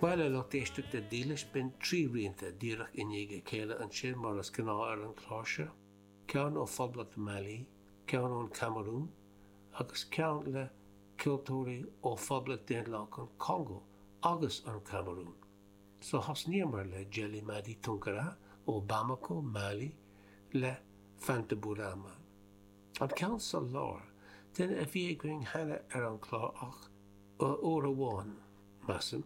Bhuel a lucht éisteachta dílis b'in trí rianta díreach i ndiaidh a chéile ansin mar is gnáth ar an chlár seo, ceann ó Phoblacht Mailí, ceann ón Camarún agus ceann le ceoltóirí ó Phoblacht Daonlathach an Chongó agus an Chamarún. So thosnaíomar le Djelimady Tounkara ó Bamako, Mali le Fanta Bourama. An ceann sa lár, duine a bhí againn cheana ar an chlár ach uair amháin, measaim,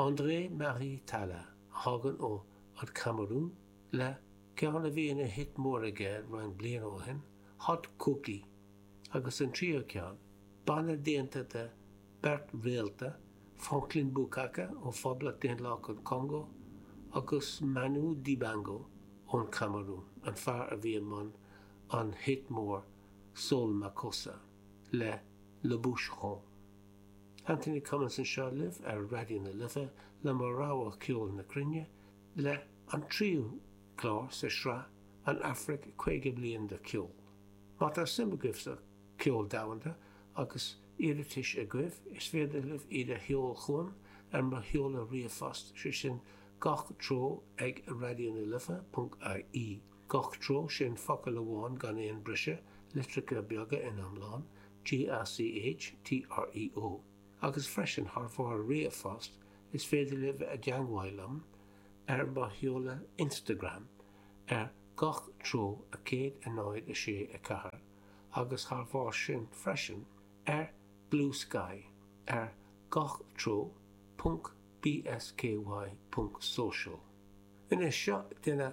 André Marie Talla a thagann ó an Chamarún le ceann a bhí ina hit mór aige roinnt bliain ó shin, Hot Koki, agus an tríú ceann, banna déanta de beirt réalta, Franklin Boukaka ó Phoblacht Daonlathach an Chongó agus Manu Dibango ón Chamarún, an fear a bhí i mbun an hit mór Soul Makossa le Le Bucheron. Anthony Cummins anseo libh ar Raidió na Life le mo rogha ceoil na cruinne le an tríú clár sa tsraith An Afraic 50 Bliain de Cheol. Má tá suim agaibh sa cheol domhanda agus iarratais agaibh is féidir libh iad a sheol chugam ar mo sheoladh ríomhphost sé sin gach treo ag raidiona life.ie. Gach treo sin focal amháin gan aon briseadh, litreacha beaga in iomlán, GACH, TREO. Agus freisin, thar bharr ríomhphost, is féidir libh dul i dteagmháil liom ar mo sheoladh Instagram ar gach treo a 106 4 agus thar bharr sin freisin, ar Bluesky ar gach treo ponc bsky ponc social. Anois, seo duine